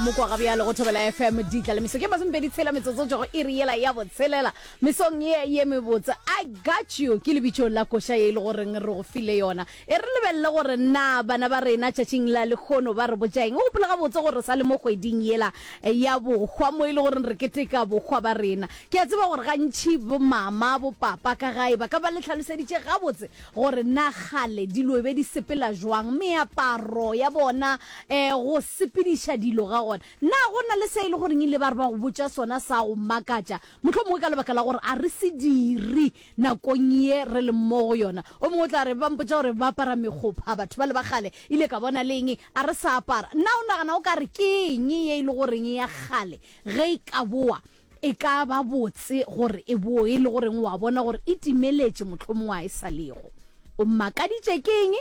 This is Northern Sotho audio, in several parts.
moko ga bjalo go thobela fm ditla le meso ke masomepedi tshela metsotso tšogo e re yela ya botshelela mesong ye ye mebotse i got you ke lebitšong la koša ye e le goreng re go file yona e re lebelele gore na bana ba rena tšatšing la lekgono ba re botšaeng o gopola gabotse gore sa le mo kgweding yela ya bokgwa mo e le goreng re keteka bokgwa ba rena ke a tseba gore gantšhi bomama bopapa ka gae ba ka ba le tlhaloseditše gabotse gore na kgale dilo e be di sepela jwang, meaparo ya bona, um go sepediša dilo ga gona. Na go na le se e le goreng e ile ba re ba go botša sona sa go makatša, mohlomongwe ka lebaka la gore a re se dire nakong ye re leng mo go yona? O mongwe o tla re, Ba mpotša gore ba apara mekgopha batho bale ba kgale, ile ka bona le eng a re sa apara. Na o nagana o ka re ke eng ye e le goreng ya kgale ge e ka boa E ka ba botse gore e bo e le go reng wa bona gore e timeletše mohlomongwe a e sa lego. O mmakaditše ke eng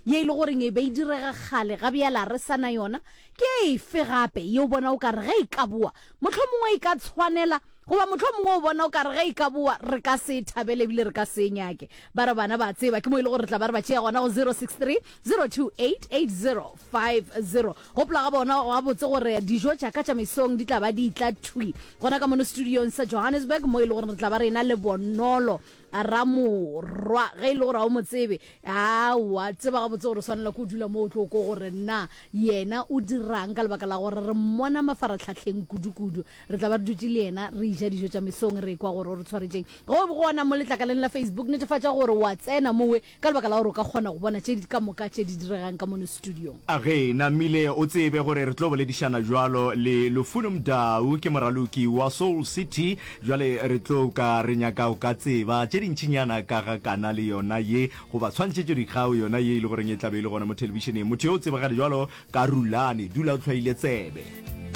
ye e le go reng e be e direga kgale ga bjala re sa na yona? Ke efe gape ye o bona o ka re ge e ka boa mohlomongwe e ka tshwanela? Goba mohlomongwe o bona o ka re ge e ka boa re ka se e thabele e bile re ka se e nyake? Ba re bana ba tseba ke mo e le gore re tla ba re ba tšea gona go 0630288050. Gopola ga bona gabotse gore dijo tša ka tša mesong di tla ba di tla thwi gona ka mono studiong sa Johannesburg mo e le gore re tla ba rena le Bonolo Ramorwa ge e le gore ga o mo tsebe aowa tseba gabotse gore o swanela ko dula mo o tlo ko gore na yena o dirang ka lebaka la gore re mmona mafaratlhatlheng kudukudu re tla ba re dutse le yena re ija dijo tša mesong re kwa gore o re tshwaretšeng go gona mo letlakaleng la Facebook netefatša gore wa tsena mowe Ka lebaka la gore o ka kgona go bona tše ka moka tše di diregang ka mono studiong. A Ge namile o tsebe gore re tlo boledišana bjalo le Lufuno Mdau, ke moraloki wa Soul City. Bjale re tlo ka re nyaka go ka tseba tše dintšinyana ka ga kanale yona ye, goba tshwantšhetšodikgao yona ye e le goreng e tla be e le gona mo thelebišeneng. Motho yo o tsebagale bjalo ka Rulani. Dula o tlhwaile tsebe.